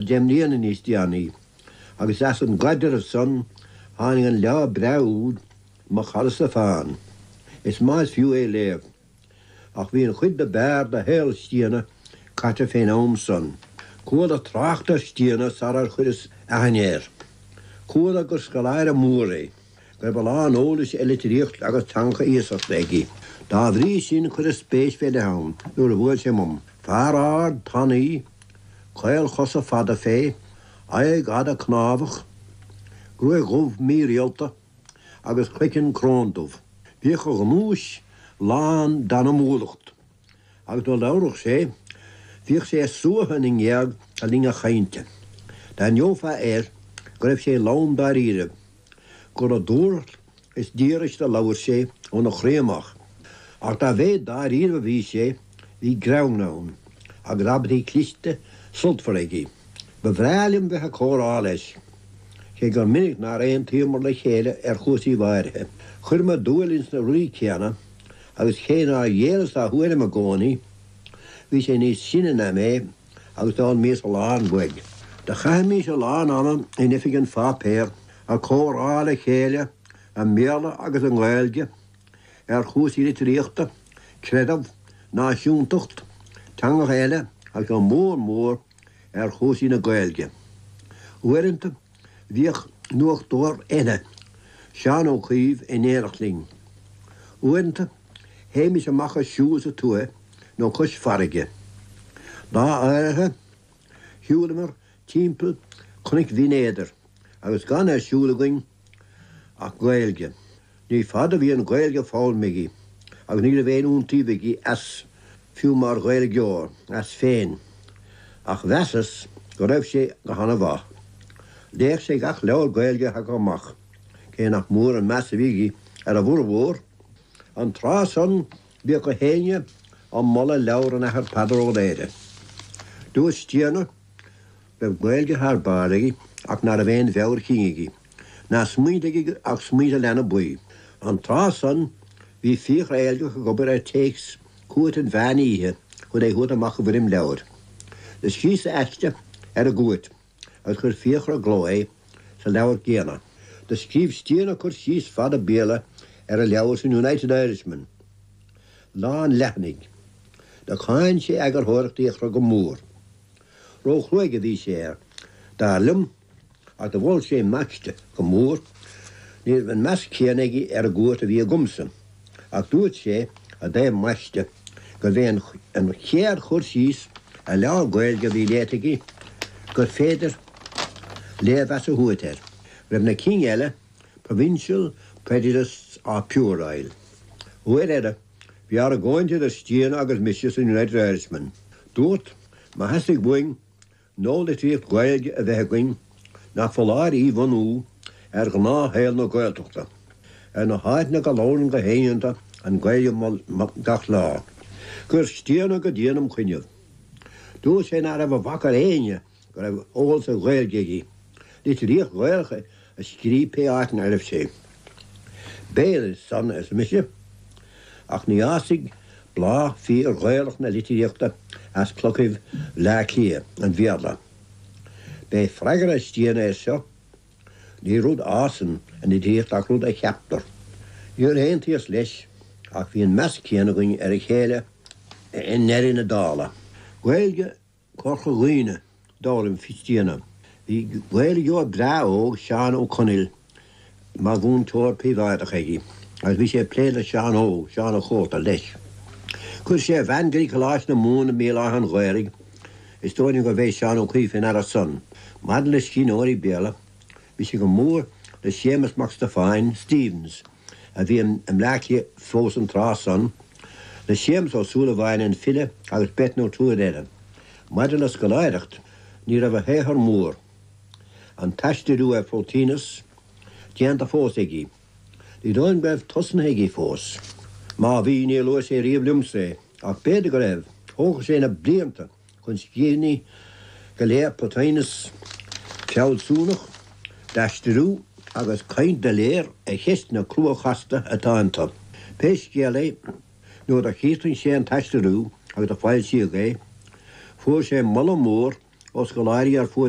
Deich mbliana níos déanaí, agus as an gcaidreamh san, tháinig an leabhar breá úd, Mo Chara Stiofán. Is maith is fiú é a léamh, ach bhí an chuid dob fhearr de shaol Stiabhna caite fén am san. Chuala trácht ar Stiabhna sarar chuireas aithne air. Chuala gur scoláire mór é. Go raibh a lán eolais ar litríocht agus teangacha iasachta aige. Dá bhrí sin cuireadh spéis fé leith ann nuair a bhuail sé umam. Fear ard, tanaí, caolchosa fada fé, aghaidh fhada cnámhach, gruaig dhubh mírialta agus croiceann crón dubh. Bhíodh a ghnúis lán d'anamúlacht. Agus nuair a labhradh sé, bhíodh sé ag suathadh na ngéag le linn a chainte. D'aithneofá air go raibh sé lán dáiríribh, gur le dúthracht is díograis a labhair sé óna chroí amach. Ach dá mhéid dáiríribh a bhí sé, bhí greann ann, agus abairtí cliste sultmhara aige. Ba bhreá liom bheith ag comhrá leis, cé gur minic nár aontaíomar le chéile ar chúrsaíbh áirithe. Chuireamar dúil ins na rudaí céanna, Agus cé nár ghéilleas dá thuairim i gcónaí, bhí sé níos sine ná mé agus d'fhoghlaimíos a lán uaidh. Do chaithimis a lán ama in oifig an pháipéir ag comhrá le chéile i mBéarla agus i nGaeilge ar chúrsaí litríochta, creideamh, náisiúntacht, teangacha eile agus go mór mór ar chúrsaí na Gaeilge. Uaireanta, Bhíodh nuachtóir eile, Seán Ó Cuív in éineacht linn. Uaireanta, théimis amach ag siúl sa tuaith nó cois farraige. Lá áirithe, shiúlamar timpeall cnoic Bhinn Éadair agus gan ar siúl againn ach Gaeilge. Ní fada a bhí an Ghaeilge foghlamtha aige agus ní raibh aon iontaoibh aige as, fiú mar Ghaeilgeoir, as féin. Ach mheasas go raibh sé go han-mhaith. Léadh sé gach leabhar Gaeilge a thagadh amach, cé nach mór an meas a bhí aige ar a bhformhór. An tráth san, bhíodh gach éinne ag moladh leabhar an Athar Peadar Ó Laoghaire, Dúirt Stiabhna, raibh Gaeilge thar barr aige ach ná raibh aon mheabhair chinn aige, ná smaointe aige ach smaointe leanbaí. An tráth san, bhí Fiachra Éilgeach ag obair ar théacs Cúirt an Mheán Oíche chun é thabhairt amach i bhfoirm leabhair. Do scríos-sa aiste ar an gCúirt agus chuir Fiachra i gcló é sa leabhar céanna. Do scríobh Stiabhna cur síos fada Béarla ar an leabhar san United Irishman, lán leathanaigh. Do cháin sé eagarthóireacht Fhiachra go mór. Róchruaidh a bhí sé air, dar liom, ach do mhol sé m'aiste go mór. Ní raibh an meas céanna aige ar an gcúirt a bhí agamsa, ach dúirt sé i dtaobh m'aiste gurbh é an chéad chur síos ar leabhar Gaeilge a bhí léite aige gur féidir léirmheas a thabhairt air, go raibh na cinn eile, Provincial Prejudiced or Puerile, uair eile. Bhí argóint idir Stiana agus mise sa United Irishman. Dúrt, má theastaigh uainn nualitríocht Ghaeilge a bheith againn, nach foláir í bhunú ar ghnáthshaol na Gaeltachta, ar na háiteanna go labhrann gach éinne iontu an Ghaeilge gach lá. Chuir Stiana go dian im' choinnibh. Dúirt sé nach raibh a bhac ar éinne go raibh eolas ar Ghaeilge aige, litríocht Ghaelach a scríobh pé áit ina raibh sé. B'fhéidir san, arsa mise, ach ní fhásfaidh bláth fíor-Ghaelach na litríochta as clochaibh Bhleá Cliath, an Bhéarla. B'é freagra Stiana air seo, Ní rud a fhásann an litríocht ach rud a cheaptar. Níor aontaíos leis, ach bhí an meas céanna againn ar a chéile i ndeireadh na dála. Gaeilge Chorca Dhuibhne d'fhoghlaim Stiana. Bhí Gaeilgeoir breá óg, Seán Ó Conaill, mar mhúinteoir príobháideach aige agus bhí sé ag plé le Seán Óg, Seán a' Chóta, leis. Chuir sé a bhean go dtí Coláiste na Mumhan i mBéal Átha an Ghaorthaidh, is dóigh liom gurbh é Seán Ó Caoimh fé ndeara san. Maidir le scríbhneoirí Béarla, bhí sé go mór le Séamas Mac Stiofáin, Stephens, a bhí i mBleácliath fós an tráth san, le Séamus Ó Súilleabháin an file agus beirt nó triúr eile. Maidir le scoláireacht, ní raibh a shaothar mór, an t-aistriú ar Phlotinus, déanta fós aige. Ní dóigh liom go raibh tosnaithe aige fós. Má bhí, níor luaigh sé riamh liomsa é, ach b'fhéidir go raibh, thógfadh sé na blianta chun scríbhinní go léir Plotinus, fealsúnach, d'aistriú agus caint doiléir ar cheisteanna crua chasta atá iontu. Pé scéal é, nuair do chríochnaigh sé an t-aistriú agus a foilsíodh é, fuair sé moladh mór ó scoláirí ar fuaid